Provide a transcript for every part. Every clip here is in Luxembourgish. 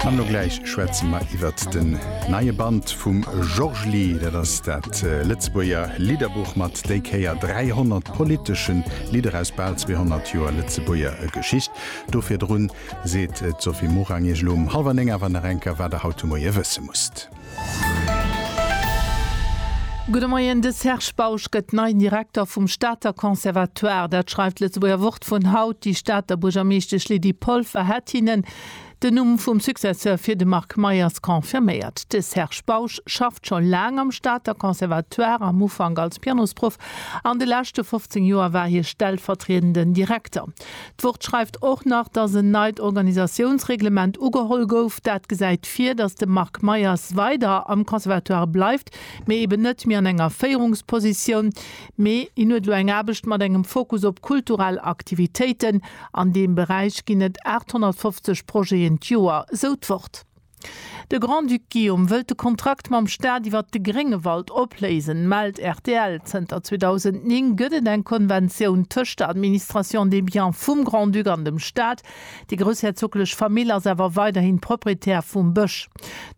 An elo gläich schwätze mer iwwert den neie Band vum Georges-Ly. Dat ass dat Lëtzebuerger Lidderbuch mat déi Kéier 300 politesche Lidder aus bal 200 Joer Lëtzebuerger Geschicht. Do virdrun seet d'Sophie Morang iech elo um hallwer néng awer nach eng Kéier, wat der haut de Moie wësse musst. Gudde Moien, De Serge Bausch gëtt neien Direkter vum Stater Conservatoire. Dat schreift d'Lëtzebuerger Wort vun haut. Déi Stater Buergermeeschtesch Lydie Polfer hätt hinnen den Numm vum Successeur fir de Marc Meyers confirméiert. De Serge Bausch schafft scho laang am Stater Conservatoire, am Ufank als Pianosproff, an de leschte 15 Joer war hie stellvertriedenden Direkter. D'Wort schreift och nach, datt en neit Organisatiounsreglement ugeholl gouf. Dat gesäit vir, datt de Marc Meyers weider am Conservatoire bleift, mee eben net méi an enger Féierungspositioun, mee hien huet elo eng Aarbecht mat engem Fokus op kulturell Aktivitéiten. An deem Beräich ginn et 850 Projeten d'Joer, esou d'Wort. De Grand-Duc Guillaume wëllt de Kontrakt mam Staat iwwert de Gréngewald opléisen, mellt rtl. Zënter 2009 gëtt et eng Konventioun tëscht der Administration des biens vum Grand-Duc an dem Staat. Déi groussherzoglech Famill ass awer weiderhin Proprietär vum Bësch.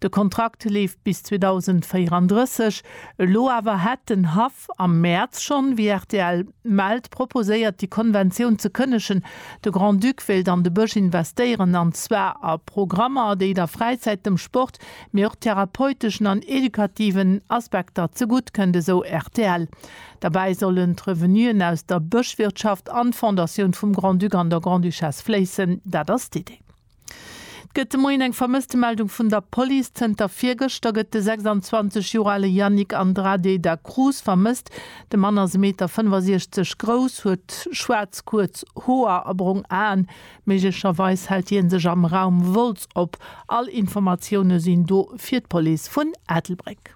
De Kontrakt leeft bis 2034. Elo awer hätt den Haff am Mäerz schonn, wéi rtl mellt, proposéiert, déi Konventioun ze kënnegen. De Grand-Duc wéilt an de Bësch investéieren, an zwar a Programmer, déi der Fräizäit, dem Sport, mee och therapeuteschen an edukativen Aspekter zegutt kënnt, esou rtl. Derbäi sollen d'Revenuen aus der Bëschwirtschaft an d'Fondatioun vum Grand-Duc an der Grande-Duchesse fléissen. Dat ass d'Idee. 't gëtt de Moien eng Vermësstemeldung vun der Police. Zënter virgëschter gëtt de 26 Joer ale Yannick Andrade da Cruz vermësst. De Mann ass e Meter 65 grouss, huet schwaarz kuerz Hoer a brong Aen. Méiglecherweis hält hie sech am Raum Wolz op. All Informatioune sinn do fir d'Police vun Ettelbréck.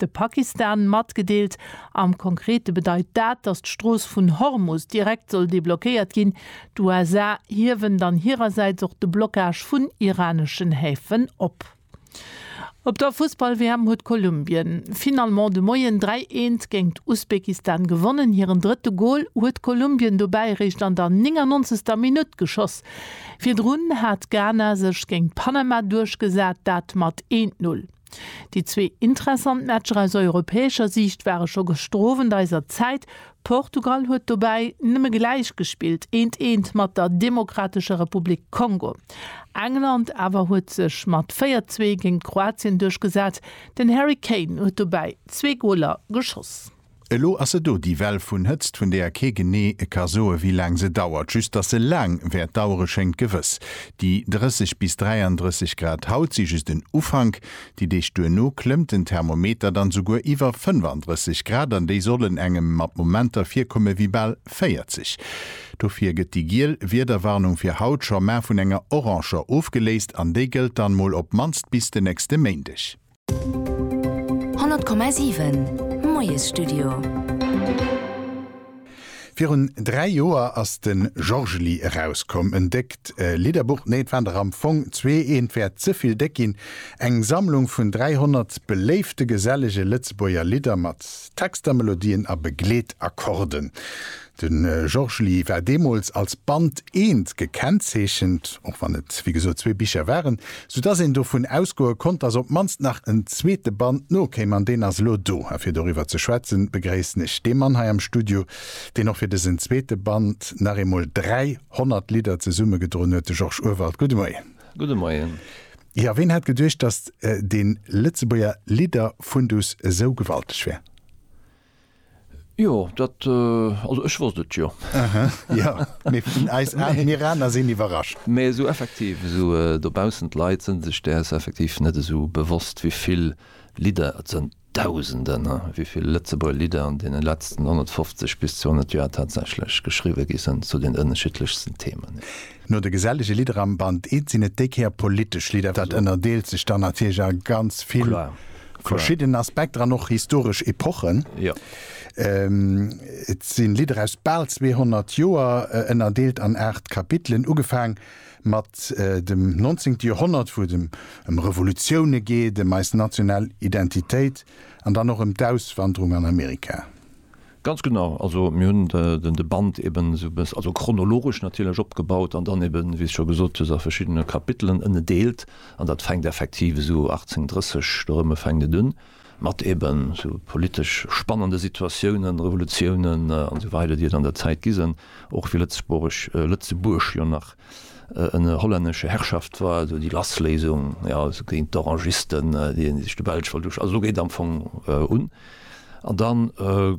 de Pakistan matgedeelt. Am Konkrete bedeit dat, datt d'Strooss vun Hormus direkt soll deblockéiert ginn. D'USA hiewen dann hirersäits och de Blockage vun iraneschen Häfen op. Op der Fussball-WM huet Kolumbien finalement de Moien 3, 1 géingt Usbekistan gewonnen. Hiren drëtte Gol huet Kolumbien dobäi eréischt an der 99. Minutt geschoss. Virdrun hat Ghana sech géint Panama duerchgesat, dat mat 1, 0. Déi zwee intressant Matcher aus europäescher Siicht ware scho gestrowend eiser Zäit. Portugal huet dobäi nëmme gläich gespillt, eent eent mat der Demokratescher Republik Kongo. England awer huet sech mat 4 zwee géint Kroatien duerchgesat, den Harry Kane huet dobäi zwee Goler geschoss. Elo ass se do, déi Well vun Hëtzt, vun deeër kee genee ka soe wéi laang se dauert. Just datt se laang wäert dauere schéngt gewëss. Déi 30 bis 33 Grad haut si just en Ufank. Déi Deeg duerno klëmmt den Thermometer dann souguer iwwer 35 Grad an déi sollen engem mat Momenter virkomme wéi bal 40. Dofir gëtt déi giel Wiederwarnung fir haut scho mar vun enger oranger ofgeléist an déi gëllt dann mol op mannst bis de nächste Méindeg. 100,7 Moiesstudio. Virun dräi Joer ass de Georgely erauskomm, en déckt Lidderbuch, nee, et waren der am Fong zwee, eent wäert ze vill déck ginn, eng Sammlung vun 300 beléifte gesellege Lëtzebuerger Lidder mat Texter, Melodien a Begleetakkorden. De Georges Lee war deemools als Band eent gekennzeechent, och wann et wéi gesot zwee Bicher waren, soudatt een dovun ausgoe konnt, datt op d'mannst nach en zweete Band nokéim. An deen ass elo do. A fir doriwwer ze schwätzen, begréissen ech dee Mann hei am Studio, deen och fir dësen zweete Band nach eemol 300 Lidder zesummegedroen huet, de Georges Urwald. Gudde Moien. Gudde Moien. Jo, ween hätt geduecht, datt dee Lëtzebuerger Lidder-Fundus esou gewalteg wär? Jo, dat, also ech wosst et jo. Aha, jo, mee vun eis an, mir aner sinn iwwerrascht. Mee esou effektiv, esou dobaussen, d'Leit sënn sech däers effektiv net esou bewosst, wéi vill Lidder, et sënn Dausenden, wéi vill Lëtzebuerger Lidder an deene letzten 150 bis 200 Joer tatsächlech geschriwwe gi sënn zu den ënneschiddlechsten Themen. No de gesellege Lidder am Band It sinn et déi Kéier politesch Lidder. Dat ënnerdeelt sech dann natierlech a ganz vill verschidden Aspekter an och historesch Epochen. Et si Lidder aus bal 200 Joer, ënnerdeelt an aacht Kapitelen, ugefaang mat dem Nonzéngte Joerhonnert, wou et ëm Revolutioune geet, ëm eis national Identitéit an dann och ëm d'Auswanderung an Amerika. Ganz genau, also mir hunn de Band eben esou e bëss, also chronologesch natierlech, opgebaut an dann eben, wéi s scho gesot hues, a verschiddene Kapitelen ënnedeelt. An dat fänkt effektiv esou 1830 dorëmme fänkt et un, mat eben esou politesch spannende Situatiounen, Revolutiounen an esou weider, déi et an der Zäit gi sinn, och wéi Lëtzebuerg, Lëtzebuerg jo nach ënner hollännesche Herrschaft war, also déi Lassléisung, jo, also géint d'Orangisten, déi sech de Belsch wollt usch. Also do geet am Fong un. An da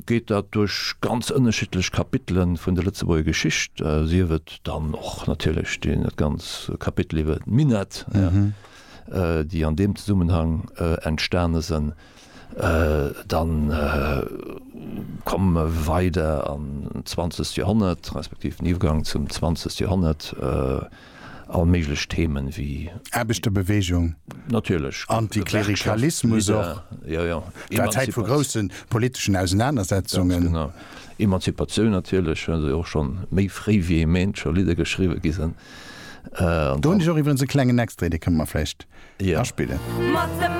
geet dat duerch ganz ënnerschiddlech Kapitele vun der Lëtzebuerger Geschicht, sief et dann och natierlech dee ganz Kapitel iwwer d'Minett, déi an deem Zesummenhang entstane sinn. Dann komme mer weider an d'zwanzegt Joerhonnert, respektiv den Iwwergang zum zwanzegt Joerhonnert. all méiglech Themen wéi. Aarbechterbewegung, Antiklerikalismus och, et war Zäit vu groussen politeschen Ausenanersetzungen. Ganz genau. Emanzipatioun natierlech, well se och scho méi fréi wéi ee Méint scho Lidder geschriwwe gi sinn. Do hunn ech och iwwerens e klengen Extrait, dee kënne mer vläicht aspillen.